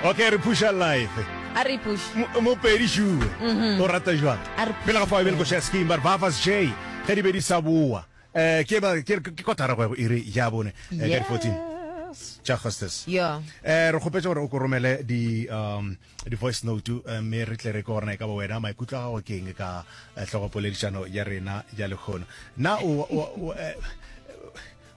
okay re phuša life a re push mopedi sure o rata jwang A re push. pele ga fa bele go share scheme but bafas j ge di be di sa boa eh ke ba ke ke kotara go ya go iri ya bone eh, ka di 14 Yes. tša hostes Yeah. eh re kgopetse gore o ko romele di um di voice note eh, mme re tle re ke gorena e ka ba wena maikutlo a gago ke eng ka eh, tlhogopoledišano ya rena ya lekgono na o- o- o- eh,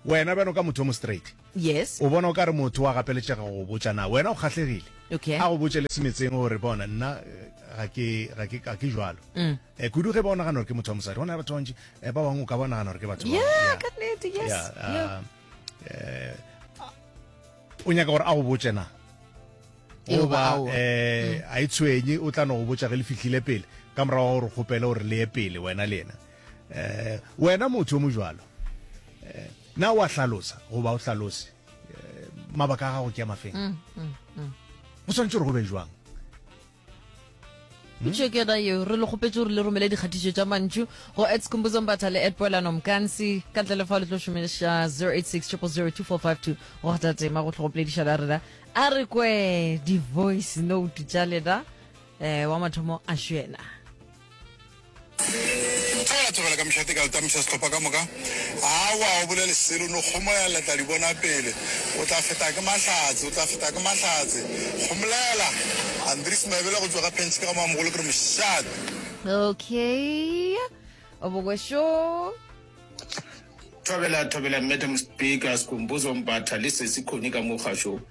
wena bjano ka motho o mo straight Yes. O bona o ka re motho wa gapeletšega go botša na wena o kgahlegile. Okay. A go botše le semetseng gore bona nna eh, ga ke ga ke ga ke jwalo. Mm. Eh kudu ge ba o nagana gore ke motho wa mosadi. Gona batho ba bantši eh, ba bangwe o ka ba o nagana gore ke batho ba bangwe. Yeah, Yeah. ka nnete, yes. Yeah, uh, Yeah. eh, o nyaka gore a go botše na Eoba goba aowa. eh a e tshwenye o tla no go botša ge le fihlile pele ka morago wa gore kgopele gore le ye pele wena le yena Eh, wena motho yo mojalo, eh, na wa hlalosa goba o hlalose eh, mabaka a gago ke ya mafeng? Mm, mm, mm. Go tshwanetse gore go be jwang? Hmm? itšo ke yona eo re le kgopetse gore le romele dikgatišo tša mantšu go ats kumbuzombatha le at poelano mkansi ka ntle le fa le tlo šomeša 086 0002452 go kgatha tema go tlhogopolediša la rena a re kwe di-voice note tša lena um wa mathomo a šwena Tla tsogela ka mehla teka letamisa sehlopha ka moka. Awa, o bolele selo, no kgomolela, le tla di bona pele. O tla feta ke mahlatse, o tla feta ke mahlatse. Kgomolela! Andries Maebela go tšwa ga Pench ka ga Moamogolo ke re mošate. Okay. Obokwesho. Thobela, thobela, Madam Speaker, Skhumbuzo Mbatha, le Sesi Connie ka mo kgašong.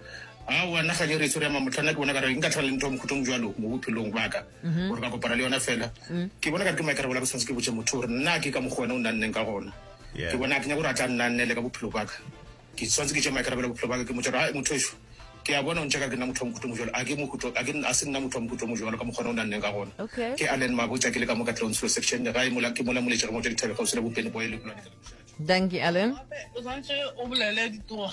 Aowa, nna kgang e re e tshwere ya mamohlana, ke bona ka re nka tlhola le ntho mokhutlong bjalo mo bophelong baka. mm-hmm. gore ka kopana le yona fela mm. ke bona ka re ke maikare bola ke tshwanetse ke botse motho gore nna ke ka mokgwa wena o nna nneng ka gona ke bona ke nyako gore a tla nna nnele ka bophelo baka ke tshwanetse ke tse maikare bola bophelo baka ke motho gore motho eso ke ya bona o ntse ka ke nna motho wa mokhuto mojalo a ke mokhuto a ke a se nna motho wa mokhuto mojalo ka mokgwa o nna nneng ka gona ke a len mabotsa ke le ka mo ka tlong selo section ga e mola ke mola moletse re mo tšedi thabega o se le bopene boe le kula Danke Allen. O santse o bolele ditoga.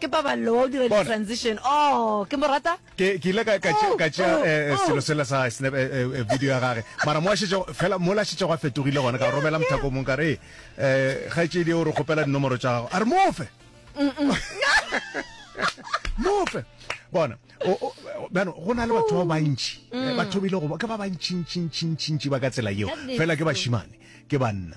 ke paballo wa o dira Bona. di-transition oh ke mo rata ke ke ile ka ka tšea- ka tšea Oh, eh, eh, oh. selo sela sa snap eh, eh, eh, video ya gage mara mo a šetše fela mo la šetšego a fetogile gona ka romela mothako o mongwe ka re eh gaetšedi o re kgopela dinomoro tša gago a re mofe mofe bona o- o- o- bjano go na le batho ba bantši Eh, batho ba ile go ba- ke ba bantšintšintšintšintši ba ka tsela yeo That is fela ke true. bašimane ke banna